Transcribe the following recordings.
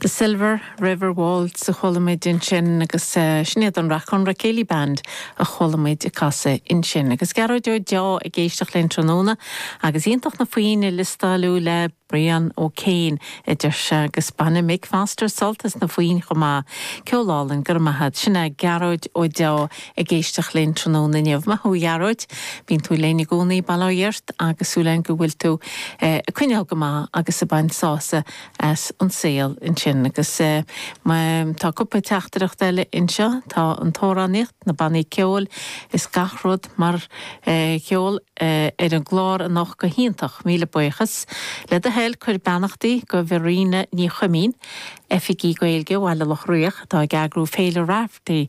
The Silver River Waltz a chuala muid ansin agus sin iad an Rathconrath Céilí Band a chuala muid ag casadh ansin. Agus Gearóid Ó Deá ag éisteacht linn tráthnóna agus iontach na foinn a liostáilú le Brian Ó Céin a deir sé agus baineann Mick Foster sult as na foinn chomh maith. Ceol álainn, go raibh maith agat. Sin é Gearóid Ó Deá ag éisteacht linn tráthnóna inniu. Maith thú a Ghearóid, bíonn tú linn i gcónaí, bail ó Dhia ort agus súil againn go bhfuil tú ag coinneáil go maith agus ag baint sása as an saol ansin. Agus tá cúpla teachtaireacht eile anseo, tá an t-amhránaíocht, na bannaí ceoil is gach rud mar cheol ar an gclár anocht go hiontach, míle buíochas. Le do thoil cuir beannachtaí go Verena Ní Chuimín, Oifigeach Gaeilge Bhaile Locha Riach atá ag eagrú Féile Raifteirí,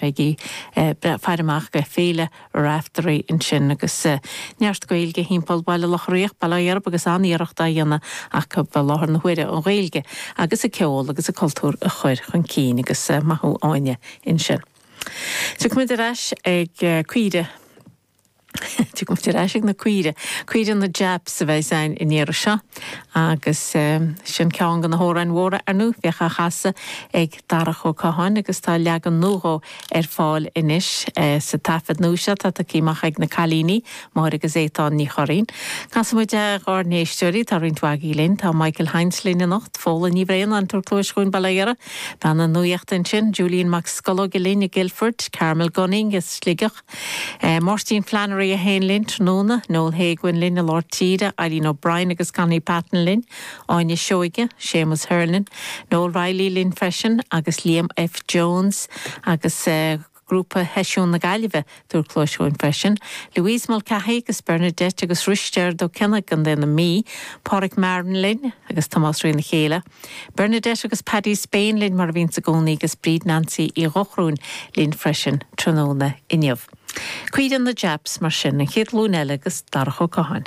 Bígí ag faire amach do Féile Raifteirí ansin agus neart Gaeilge thimpeall Baile Locha Riach, bail ó Dhia oraibh agus an-iarracht á dhéanamh acu i láthair na huaire an Ghaeilge agus an ceol agus an cultúr a chur chun cinn agus maith thú Áine ansin. Tiocfaimid ar ais ag caoirigh. Tiocfaimid ar ais ag na caoirigh. Caoirigh na Japs a bheidh ann an iarraidh seo agus sin ceann de na hamhráin mhóra ar ndóigh. Bhíodh á chasadh ag Darach Ó Catháin agus tá leagan nua dhó ar fáil anois sa taifead nua seo atá tagtha amach ag na cailíní, Máire agus Étáin Ní Churraoin. Casfaimid dár n-éisteoirí, tá roinnt mhaith againn linn. Tá Michael Hinds linn anocht, Fódhla Ní Bhraonáin, ag tabhairt cluais dhúinn, bail ó Dhia uirthi, bean na nuachta ansin, Julian Mac Scolóige linn i Guildford, Carmel Gunning as Sligeach, Máirtín Flannery é féin linn tráthnóna, Noel Héguin linn i Lár Tíre, Eileen O'Brien agus Connie Patton linn, Áine Seoige, Séamus Hernon, Noel Reilly linn freisin agus Liam F Jones agus grúpa sheisiún na Gaillimhe ag tabhairt cluais dhúinn freisin, Louise Mulcahy agus Bernadette agus Risteard Ó Cionnaith i gContae na Mí, Páraic Marren linn agus Tomás Rionn a chéile. Bernadette agus Paddy Spain linn mar a bhíonns i gcónaí agus Bríd Nancy Uí Dhochrúin linn freisin tráthnóna inniu. Caoirigh na Japs mar sin An Chéad Ghlúin Eile agus Darach Ó Catháin.